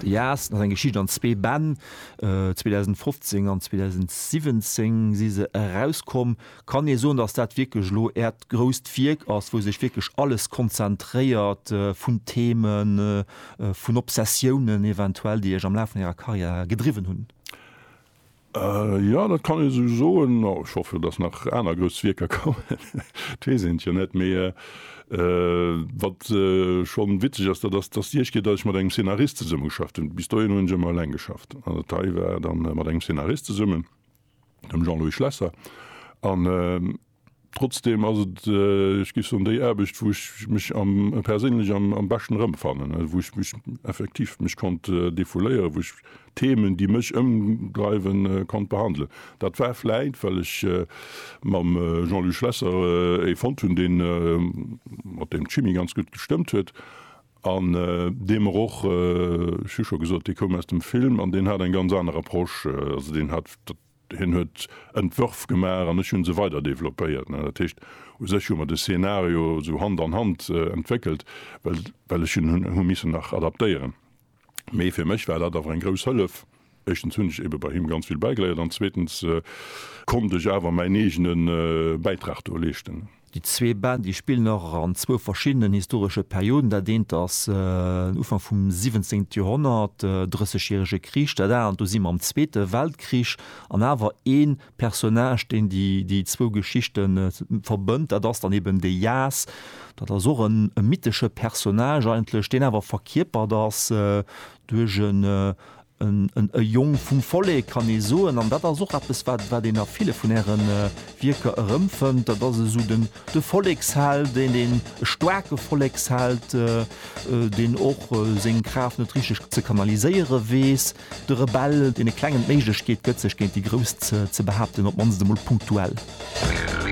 De Jaasten ass eng Geschicht an zwee Bänn. 2015 an 2017 si se erauskomm. Kann ee soen, datt dat wierklech elo Äert grousst Wierk ass, wou sech wierklech alles konzentréiert vun Themen, vun Obsessiounen eventuell, déi Iech am Laf vun Ärer Karriär gedriwwen hunn? Jo, dat kann ee sou soen. Ech hoffe, datt nach aner grouss Wierker kommen, et weess een et jo net. Mee wat scho witzeg ass, dat ass, datt Dir Iech gitt, datt ech mat engem Szenarist zesummegeschafft hunn. Bis dohin hunn ech ëmmer eleng geschafft. An dat hei war da mat engem Szenarist zesummen, dem Jean-Louis Schlesser. An Trotzdem ass et, ech géif soen, déi Aarbecht, wou ech mech perséinlech am beschten erëmfannen, wou ech mech effektiv mech konnt defouléieren, wou ech d'Themen, déi mech ëmdreiwen, konnt behandelen. Dat war vläicht, well ech mam Jean-Luc Schlesser ee fonnt hunn, dee mat deem d'Chimie ganz gutt gestëmmt huet an dee mer och, ech hu scho gesot, dee koum aus dem Film an deen hat eng ganz aner Approche. Also deen hat, dat Hien huet Entwërf gemaach an ech hu se weider developpéiert. Dat heescht, u sech hu mer de Szenario esou Hand an Hand entwéckelt, well ech en hu missen nach adaptéieren. Mee fir mech war dat awer eng grouss Hëllef. Éischtens hunn ech eebe bei him ganz vill bäigeléiert an zweetens konnt ech awer mäin eegene Bäitrag do leeschten. Déi zwee Bänn, déi spillen och an zwou verschiddenen historesche Perioden. Dat eent ass den Ufank vum siwwenzéngte Joerhonnert, Drëssegjärege Krich, dat anert, do si mer am Zweete Weltkrich. An awer ee Personnage, deen déi zwou Geschichte verbënnt, dat ass dann eben de Jas. Dat ass och e mythesche Personnage eigentlech, deen awer verkierpert ass duerch E Jong vum Vollek, kann ee soen. An dat ass och eppes, wat een a ville vun Äre Wierker erëmfënnt. Dat ass esou de Volleksheld, deen e staarke Volleksheld, deen och seng Kraaft net richteg ze kanaliséiere weess, de Rebell, deen e klengen d'Méiglechkeet gëtt, sech géint déi Grouss ze behaapten, op d'mannst emol punktuell.